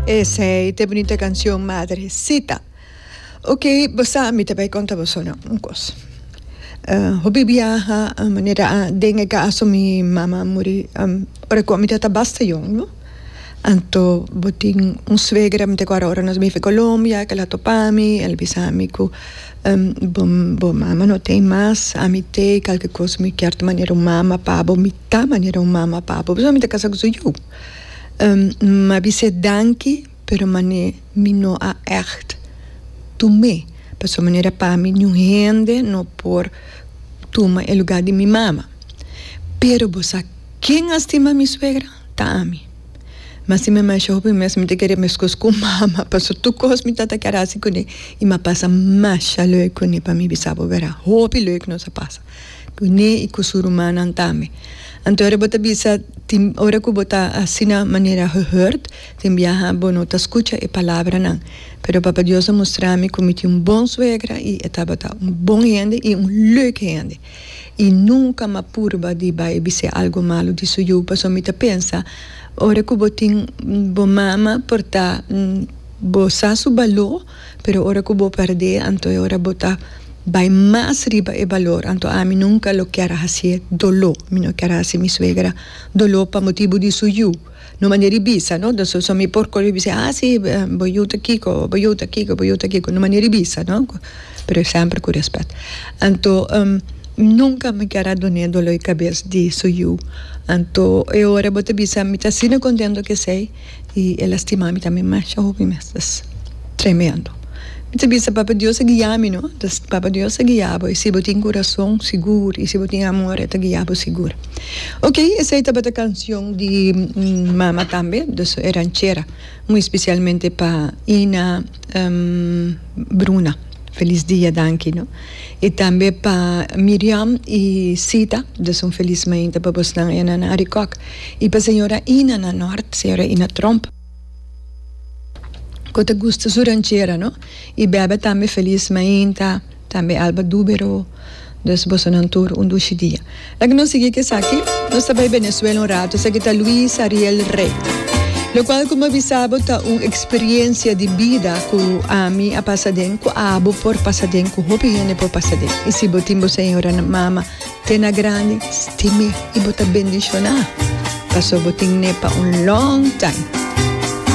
Esey ta e bunita cancion Madrecita. Ok, bo sa, mi ta bay conta boso no un cos. Uh, hopi biaha, uh, manera a, den e caso mi mama muri, um, ora cu mi ta ta basta jong, no? Anto bo tin un suegra, mi ta cuadra ora nos bifi Colombia, el a topa mi, el a bisa mi cu, um, bo, bo mama no ta ey mas, ami ta ey, calke cos mi kier ta manera un mama pa bo, mi ta manera un mama pa bo, pasobra mi ta casa cu su yiu. N a bis'é danki, pero manera mi no a ègt tum'é, pasobra manera pa mi niun hende no por tuma e lugá di mi mama. Pero bo sa ken a stima mi suegra? Ta ami. Mas si mi a masha hopi mes mi ta kere meskos ku mama, pasobra tur kos mi tabata kere hasi kuné i mi a pasa masha lèk kuné pa mi bisa bo, bera? Hopi lèk nos a pasa. Ku Ni i ku su rumannan tambe. Anto ora bo ta bisa, Tin ora ku bo ta asina manera gehurd, tin biaha bo no ta skucha e palabranan. Pero Papa Dios a mustra mi ku mi tin un bon suegra i e tabata un bon hende i un leuk hende. I nunka m'a purba di bai bis'é algu malu di su yu, paso mi ta pensa, Ora ku bo tin bo mama por ta bo sa su baló, pero ora cu bo perdé anto e ora bo ta bay mas riba e balor, anto ami nunca lo kier hacié doló, mi no kier haci mi suegra doló pa motibu di su yu, no manera di bisa no, ta so mi por coge bisé ah si bo yu ta kico, bo yu ta kico, bo yu ta kico, no manera di bisa no, pero semper cu respet, anto nunca mi kier a doné doló di cabes di su yu, anto e ora bo ta bisa mi ta asina contento cu esey. I e lastima mi tambe masha hopi mes. Ta tremendo. Mi ta bisa Papa Dios a guia mi no. Entonces Papa Dios a guia bo i si bo tin curason sigur i si bo tin amor e ta guia bo sigur. Oke esei tabata cancion di mama tambe, dus e ranchera, muy especialmente pa Ina. Bruna felis dia danki no y tambe pa Miriam y Sita dus un felis mainta pa bos nan enan na Arikok y pa señora Ina na Nort señora Ina Tromp cu ta gusta su ranchera no y bebe tambe felis mainta. Tambe Alba Dubero. Dus bosonan tur un dushi dia. Laga nos sigui ku esaki. Nos ta bai Benezuela un ratu. Esaki ta Luis Ariel Rey. Lokual ku mi a bisa bo ta un eksperiencia di bida ku ami a pasa den, ku abo por pasa den, ku hopi hende por pasa den. I si bo tin bo señora mama te na grandi, stime i bo ta bendishoná, paso bo tin ne pa un long time.